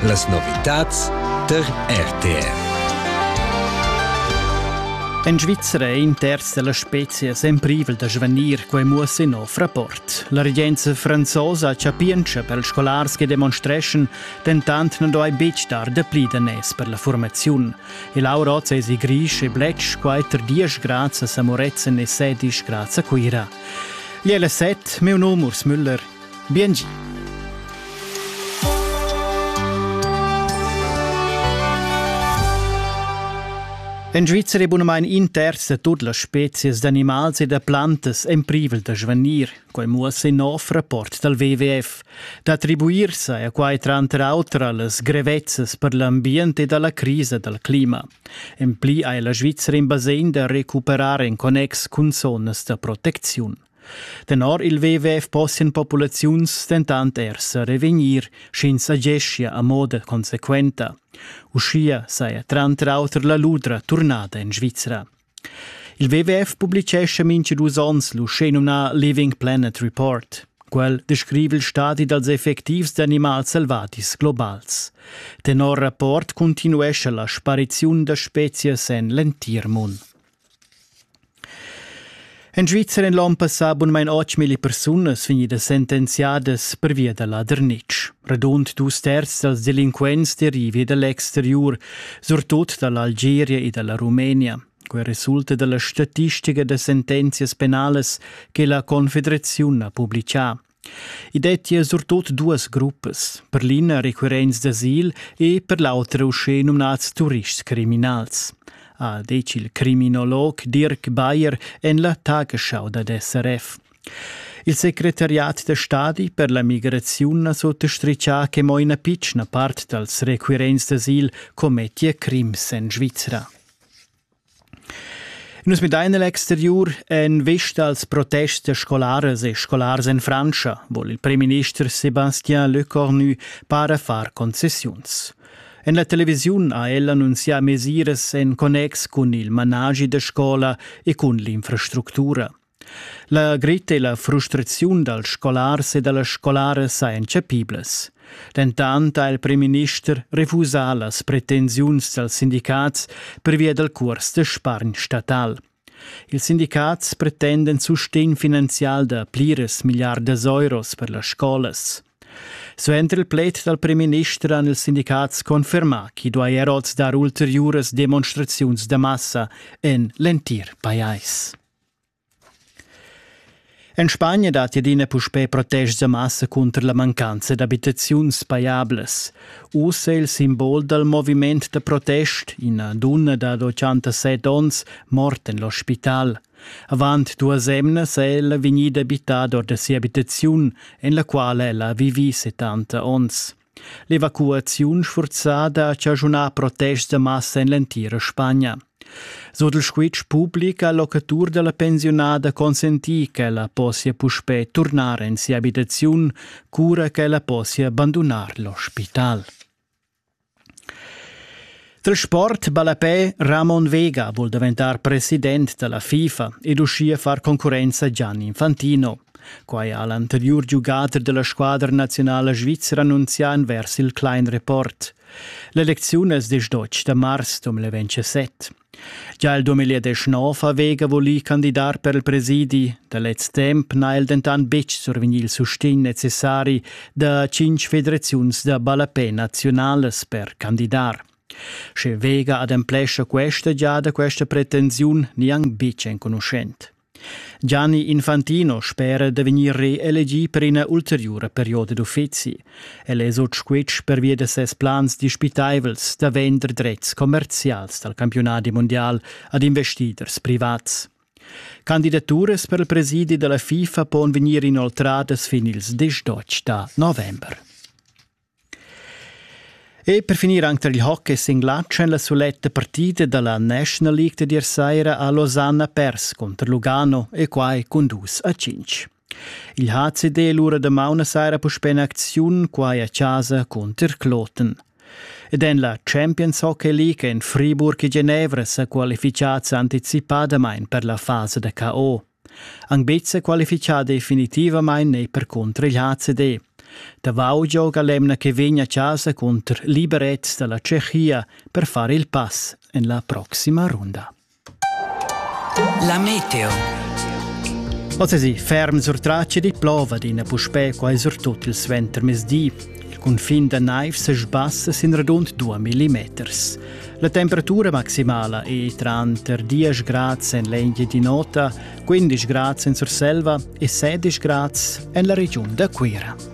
Las novitads tar RTR. En Svizzera è in terz della spezia semprivel da svanir quei muosse in nov rapport. La regenza franzosa chapientscha per ils scolars che demonstreschan, dentant non doi betg dar de pli danès per la formaziun. E Laura Otz es i grisch e blech quater dies grazie a Samoretzen e sedisch grazie a Cuira. Gli è le set, meu nom Urs Müller, Biengi. En Svizra è bunamain in terz da tut las spezias d'animals e da plantas en privel da svanir, quai muossa in nov rapport dal WWF. D'attribuir sa è quai tranter auter a las grevezzas per l'ambient e da la crisa dal clima. En pli hai la Svizra in basegn da recuperar en connex cun zonas da protecziun. Tenor il WWF possian populaziuns dentant er sa revegnir, sch'ins ageschia a moda consequenta. Uschia saja tranter auter la ludra turnada en Svizra. Il WWF publicescha mintga dus onns l'uschenumnà Living Planet Report. Quel descriva il stadi dals effectivs d'animals selvadis globals. Tenor rapport cuntinuescha la spariziun da spezias en l'entir mund. In Svizzer in l'on passà bunmain 8.000 persunas vegnidas sentenziadas pervia da ladernitsch. Radund dus terz dals delinquents derivi da l'exteriur, surtut da l'Algeria e da la Rumenia. Quel resulta dalla statistica da sentenzias penalas che la Confederaziun ha publicà. I dettia surtut duas gruppas, per l'ina recurrents d'asil e per l'autra uschè numnads turists criminals, ha detg il criminolog Dirk Bayer en la Tagesschau dad SRF. Il secretariat da stadi per la migraziun ha sottastritgà che mo ina pitschna part dals recurrents d'asil commettia crims en Svizra. Nus midain el exteriur en vista als protests da scolaras e scolars en Frantscha, vol il premierminister Sébastien Lecornu para far concessiuns. En la televisiun ha el annunzià mesiras en connex cun il managi da scola e cun l'infrastructura. La gretta e la frustraziun dals scolars e da las scolaras sajan chapiblas. Dentant ha il primminister refusà las pretensiuns dals sindicats pervia dal curs da spargn statal. Ils sindicats pretenden sustegn finanzial da pliras milliardas euros per las scolas. Suenter il pled dal primminister han ils sindicats confermà ch'i duai er oz dar ulteriuras demonstraziuns da massa en l'entir pajais. En Spagna datti adina puspè protest da massa cunter la mancanza d'abitaziuns pajablas. Uss è il simbol dal moviment da protest ina dunna dad 87 onns morta en l'ospital. Avant duas emnas è ella vegnida abitada or da sia abitaziun, en la quala ella ha vivì 70 onns. L'evacuaziun sfurzada ha chaschunà protests da massa en l'entira Spagna. Sut il squitsch public ha locatur da la pensiunada consentì ch'ella possia puspè turnar en sia abitaziun, cura ch'ella possia bandunar l'ospital. Dal sport ballapè Ramon Vega vul daventar president da la FIFA ed uschia far concurrenza Gianni Infantino. Quai ha l'anteriur giugader da la squadra nazionala svizra annunzià envers il Klein Report. L'elecziun es des 12 da mars 2017. Già il 2019 ha Vega volì candidar per il presidi. Da lez temp n'ha el dentant betg survegnì il sustegn necessari da tschinch federaziuns da ballapè naziunalas per candidar. Sche Vega ademplescha questa giada questa pretensiun niang bitg enconuschent. Gianni Infantino spera da vegnir reelegì per ina ulteriura perioda d'uffizi. El è sut squitsch pervia da ses plans dispitaivels da vender drets commerzials dal campiunadi mundial ad investiders privats. Candidaturas per il presidi dalla FIFA pon vegnir inoltradas fin ils 18 da november. E per finir anche tra il hockey singlatsch en la suletta partita dalla National League di ieri sera a Losanna pers contro Lugano e quai con dus a 5. Il ha cedel ora damaun a saira puspè in acziun quai a chasa cunter Kloten. Ed en la Champions Hockey League en Friburg e Genevra sa qualifichads anticipadamain per la fasa da KO. Anc betg sa qualifichà definitivamain è percunter il HCD. Davau gioga l'emna che vegn a chasa cunter Liberec da la Tschechia per far il pass en la proxima runda. La meteo. Oz ferm sur traceri plova d'ina puspè quai surtut il suentermezdi. Il cunfin da naiv se sbassa sin radund 2 millimeters. La temperatura maximala è tranter 10 grads en l'Engie di Nota, 15 grads en Surselva e 16 grads en la regiun da Cuira.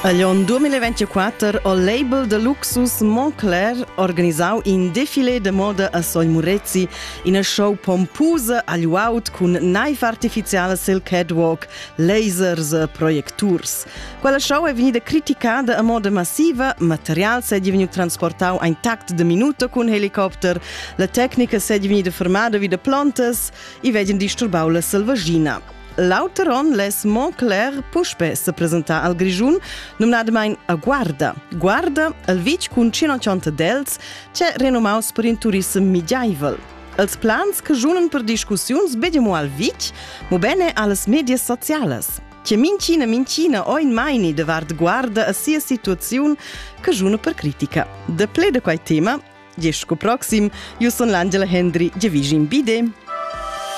Agl onn 2024 ho label da Luxus Montclair organisau in defilé de moda a Soi Murezi, ina show pompusa agl uaut cun naiv artificiala sil catwalk, lasers e projecturs. Quella show è vegnida criticada a moda massiva, material s'è diventau transportau ein tact de minuta cun helicopter, la tecnica s'è vegnida fermada vi da plontas e vegien disturbau la selvaschina. L'auter onn less Montclair puspè se presentar al Grischun, numnadamain a Guarda. Guarda, el vitg cun 180 dels, c'è renomaus per in turissem migiaivel. Els plans che junan per discussiuns bedemo al vitg, mo bene alles medias socialas. Che mincina mincina oin maini de vard Guarda a sia situaziun che juna per critica. De ple de quai tema, gest co proxim, io son l'Angela Hendry, Gevigin Bide.